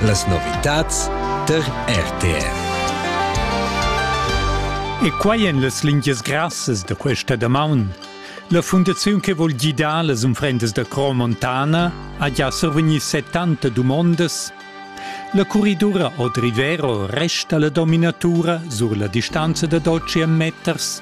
Las novitads der RTR. E quai en las lingias grassas da questa damaun. La fundaziun che vul gidar las unfrendas da Cro Montana ha già survegnì 70 dumondas. La curridura od Rivero resta la dominatura sur la distanza da 12 meters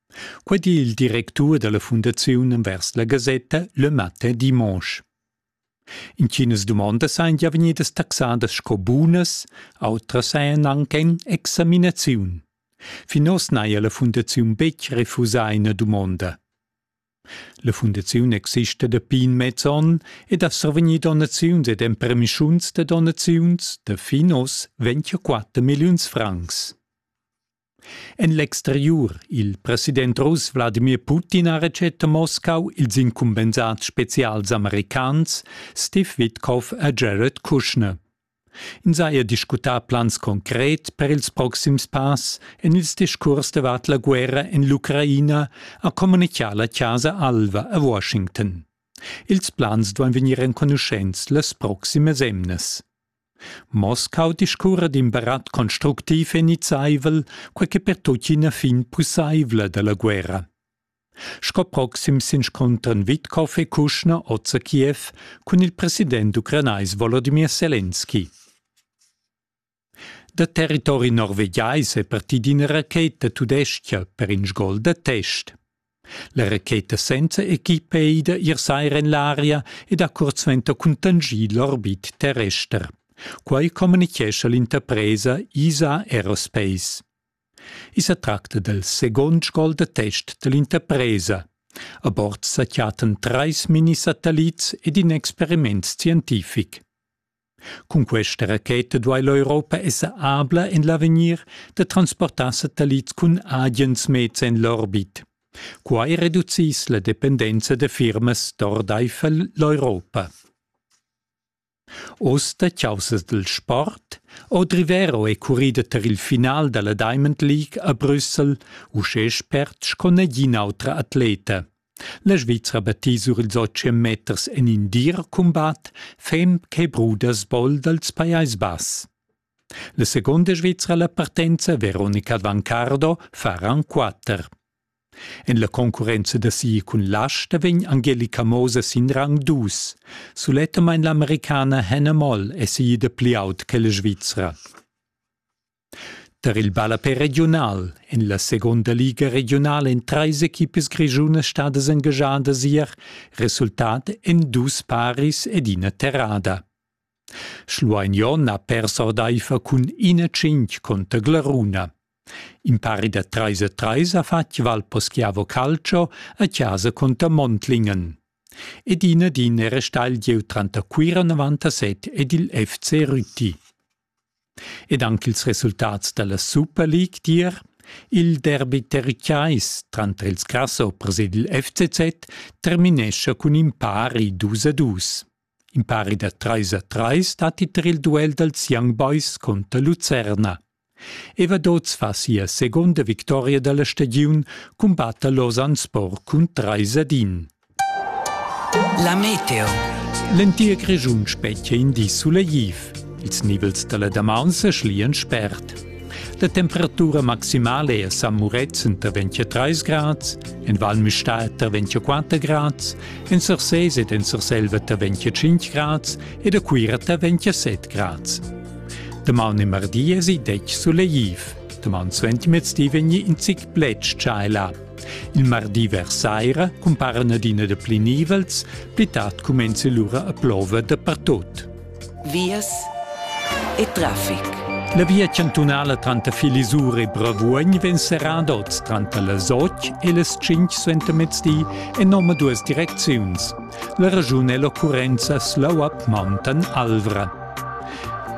Quei di il directur dalla fundaziun envers la gasetta Le Matin Dimanche. Intginas dumondas ein gia vegnidas taxadas sco bunas, outras ein anc en examinaziun. Fin oz n'haja la fundaziun betg refusà ina dumonda. La fundaziun exista dapi in mez onn ed ha survegnì donaziuns ed empermischuns da donaziuns da fin oz 24 milliuns francs. En l'exteriur, il president russ Wladimir Putin ha retschet a Moscau ils incumbensads spezials americans Steve Witkoff e Jared Kushner. Ins haja discutà plans concret per ils proxims pass en ils discurs davart la guerra en l'Ucraina, ha communichà la Chasa Alva a Washington. Ils plans duan vegnir enconuschents las proximas emnas. Moskau discurra d'in barat constructiv e nizzaivel, quei che per tutti ina fin pusseivla dalla guerra. Sco proxim s'inscontran Witkov e Kuschner oz a Kiew cun il president ucranais Volodymyr Selenski. Da territori norvegiais è partida ina racheta tudestga per in gol da test. La raqueta senza equipa ei da ir saira en l'aria ed ha cuort suenter cuntanschì l'orbit terrester. Quai communichescha l'interpresa ISA Aerospace. I sa tracta dal second gol da test dall'interpresa. A bord sa chattan trais minisatellits ed in experiment scientific. Cun questa racheta duai l'Europa esser abla en l'avegnir da transportar satellits cun agens meds en l'orbit. Quai reduciss la dependenza da firmas d'ordaifer l'Europa. Oz da caussas dal sport. Odrivero è currida tar il final da la Diamond League a Brüssel, uschè spert sco nagin autra atleta. La Svizra batti sur ils otg meters en in dir cumbat, fem che bruda sbol dals Pajais Bass. La seconda Svizra la partenza Veronica Vancardo fa ran quatter. En la concurrenza da si cun l'asta vegn Angelica Moser sin rang dus. Sulettamain l'americana Hannah Moll è si da pli aut che la Svizra. Tar il ballapè regiunal en la segunda liga regiunala èn trais equipas grischunas stadas engaschadas ier, resultat en dus paris ed ina terrada. Schlueignon ha pers ordaifer cun ina tschintg conter Glaruna. In pari da trais a trais ha fatg Valposchiavo Calcio a casa conter Montlingen. Ed ina din era stagl gieu tranter Cuira 97 ed il FC Rütti. Ed anc ils resultats da la Super League dir. Il derbi terricais tranter ils Grasso presid il FCZ terminescha cun in pari dus a dus. In pari da trais a trais datti tar il duel dals Young Boys conter Lucerna. Evadoz fa sia seconda victoria da la stagiun, cumbatta Lausanne Sport cun trais ad in. La meteo. L'entir Grischun spetga in di sulegliv. Ils nivels dalla damaun se schlian spert. La temperatura maximale a San Murezzan tar 23 grads, en Val Müstair tar 24 grads, en Sursés ed en Surselva tar 25 grads ed a Cuira tar 27 grads. Damaun e mardi esi dec sulegliv. Damaun suentimezdi vegni in zic pletg tschailar. Il mardi vers saira cumparan adina da pli nivels, pli tard cumenza lura a plover dapertut. Vias e traffic. La via chantunala tranter Filisur e Bravuogn vegn serrada oz tranter las 8 e las 5 suentermezdi en omaduas direcziuns. La raschun è l'occurrenzas l'auap Mountain Alvra.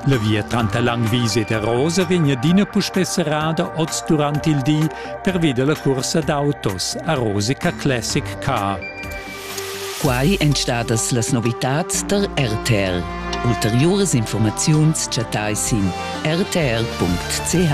La via tranter Langwies ed Arosa vegn adina puspè serrada oz durant il di pervi da la cursa d'autos Arosica Classic Car. Quai èn stadas las novitads tar RTR. Ulteriuras informaziuns chattai sin rtr.ch.